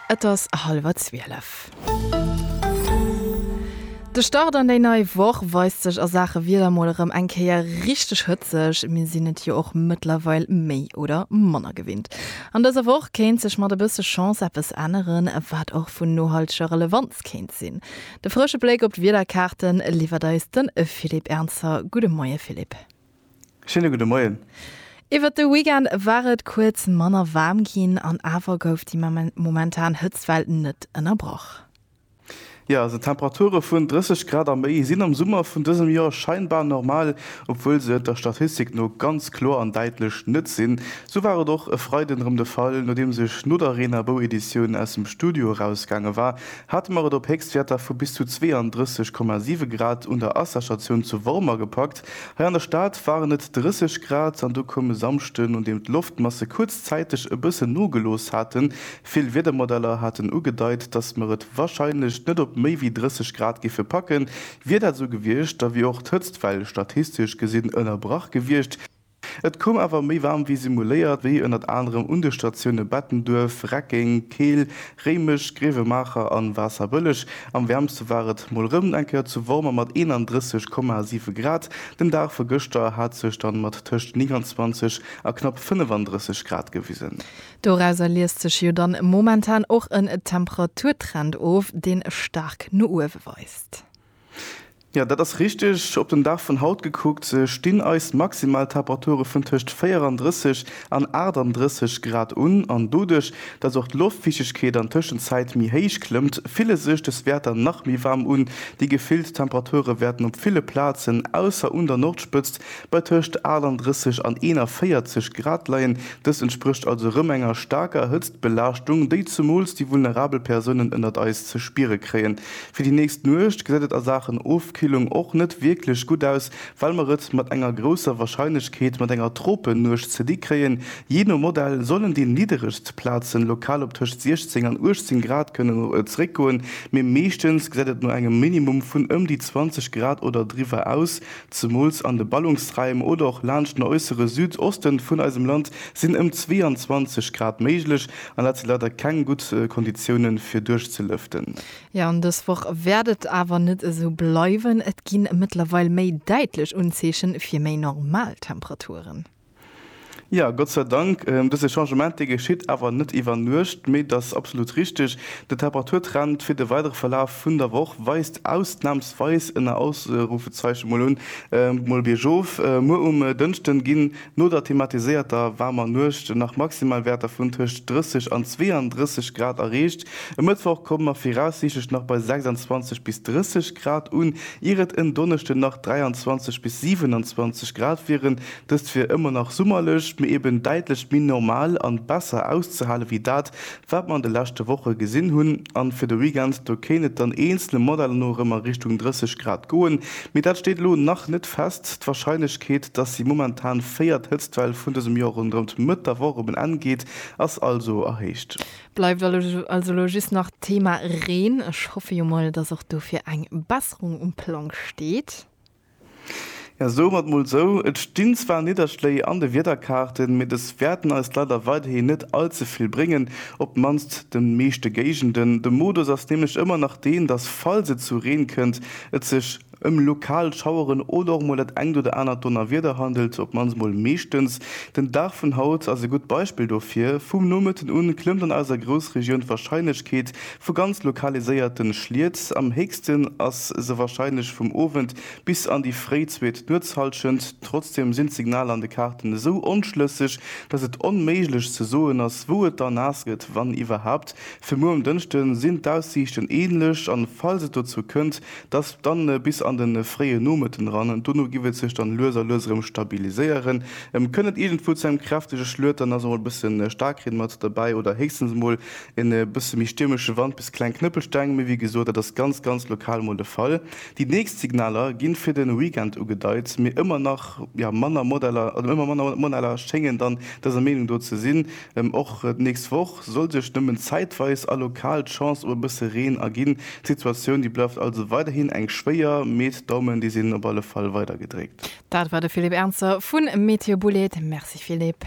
Et ass hallwer zwielef. De Start an déi nei Woch weist sech a Saache Wieder mol erëm eng Kéier richteg hëtzeg. Mir sinn et jo och mëttlerweil méi oder manner gewinnt. An dëser Woch kéint sech mat e bësse Chance eppes änneren, wat och vun nohalteger Relevanz kéint sinn. De frësche Bléck op d'Wiederkaarte liwwert eis de Philippe Ernzer. Gudde Moie Philippe. Schéine gudde Moien. Iwwert de Weekend war et kuerz manner waarm ginn an awer gouf déi momentan Hëtztwell net ënnerbrach. Jo, also Temperature vun 30 Grad a méi sinn am Summer vun dësem Joer scheinbar normal, obwuel se et der Statistik no ganz kloer an däitlech net sinn. Sou war et och e Freiden erëm de Fall. Nodeems ech no der reener Bou-Editioun aus dem Studio erausgaange war, hate mer et op Héchstwäerter vu bis zu 32,7 Grad un der Asserstatioun zu Wormer gepackt. Hei an der Stad waren et 30 Grad an du koum e Samschde, nodeem d'Loftmasse kuerzzäiteg e bëssen nogelooss haten. Vill Wiedermodeller haten ugedeit, dass mer et warscheinlech net op méi wéi 30 Grad géife packen. Wier dat esou gewiescht, da wier och d'Hëtztwell statistesch gesinn ënnerbrach gewiescht. Et koum awer méi waarm wéi simuléiert, wéi ënnert anerem un de Statioune Bettenduerf, Reckeng, Keel, Réimech, Gréiwemaacher an Waasserbëlleg. Am wäermste war et mol rëm eng Kéier zu Wormer mat 31,7 Grad. Den Dag vu gëschter hat sech dann mat tëscht 29 a knapp 35 Grad gewisen. Dorauser liest sech jo dann momentan och en Temperaturtrend of, deen staark no uewe weist. Jo, dat ass richteg. Op den Dag vun haut gekuckt stinn eis maximal Temperature vun tëscht 34 an 38 Grad un. An doduerch, dass och d'Loftfiichtegkeet an Tëschenzäit méi héich klëmmt, fille sech des Wäerter nach méi waarm un. Déi gefillt Temperature wäerten op ville Plazen, ausser un der Nordspëtzt, bei tëscht 38 an 41 Grad leien. Dëst entsprécht also erëm enger staarker Hëtztbelaaschtung, déi zemools déi vulnerabel Persounen ënnert eis ze spiere kréien. Fir déi nächst Nuecht gesäit et a Saachen Ofkillung och net wierklech gutt aus, well mer et mat enger grousser Warscheinlechkeet mat enger Tropennuecht ze di kréien. Jee no Modell sollen déi nidderegst Plaze lokal op tëscht 16 an 18 Grad kënnen zeréckgoen, mee meeschtens gesäit et no engem Minimum vun ëm déi 20 Grad oder driwwer aus. Zemools an de Ballungsraim oder och laanscht den äussere Süd-Oste vun eisem Land sinn ëm 22 Grad méiglech, an dat si leider keng gutt Konditioune fir duerchzelëften. Jo, an dës Woch wäert et awer net esou bleiwen. Et gi mëttlerweil méi däitlech Unzeeche fir méi normal Temperaturen. Jo, Gott sei Dank. Dëse Changement, dee geschitt awer net iwwer Nuecht, mee et ass absolut richteg, de Temperaturtrend fir de weidere Verlaf vun der Woch weist ausnamsweis, ënner Ausrufezeichen mol un, mol biergof. Muer um Dënschden ginn No der thematiséierter waarmer Nuecht sinn nach Maximalwäerter vun tëscht 30 an 32 Grad erreecht. E Mëttwoch komme mer viraussiichtlech nach bei 26 bis 30 Grad un, ier et en Donneschde nach 23 bis 27 Grad wieren. Dëst wier ëmmer nach summerlech, mee eben däitlech méi normal an besser auszehale wéi dat, Wat mer an de leschte Woche gesinn hunn, an fir de Weekend, do kéint et dann eenzelne Modeller no erëm a Richtung 30 Grad goen, mee dat steet elo nach net fest. D'Warscheinlechkeet, dass déi momentan véiert Hëtztwell vun dësem Joer ronderëm d'Mëtt der Woch op en Enn geet, ass also erhéicht. Bleift also elo just nach d'Thema Reen. Ech hoffe jo mol, dass och do fir eng Besserung um Plang steet. Ja, soe mer et mol sou, et stinn zwar Nidderschléi an de Wiederkaarten, mee dës wäerten eis leider weiderhi net all ze vill bréngen, op d'mannst de meeschte Géigenden. De Modus ass nämlech ëmmer nach deen, dass falls et zu Reen kënnt, et sech ëm lokal Schaueren oder och mol dat engt oder anert Donnerwieder handelt, op d'mannst mol meeschtens. Den Dag vun haut ass e gutt Beispill dofir, vum Nomëtten un klëmmt an eiser Groussregioun d'Warscheinlechkeet Vu ganz lokaliséierte Schliet, am héchsten ass se warscheinlech vum Owend bis an déi fréi zweet Nuetshallschent. Trotzdem sinn d'Signaler an de Kaarten esou onschlësseg, dass et onméiglech ze soen ass, wou et da naass gëtt, wann iwwerhaapt. Fir muer um Dënschde sinn d'Aussiichten änlech, an falls et dozou kënnt, dass dann bis an de fréie Nomëtten eran. Dono giff et sech dann lues a lues erëm stabiliséieren. Kënnt et iergendwou zu engem kräftege Schluet, dann ass emol e bësse Staarkreen mat derbäi oder héchstens emol En bësse méi stiermesche Wand bis kleng Knëppelsteng, mee wéi gesot, dat ass ganz, ganz lokal mol de Fall. Déi nächst Signaler gi fir de Weekend ugedeit, mee ëmmer nach manner Modeller schéngen dann dëser Meenung do ze sinn. Och d'nächst Woch soll sech nëmmen zäitweis a lokal d'Chance op e bësse Reen erginn. D'Situatioun, déi bleift also weiderhin eng schwéier, mee d'Daumen, déi sinn op alle Fall weider gedréckt. Dat war de Philippe Ernzer vu Météo Bouled. Merci Philippe.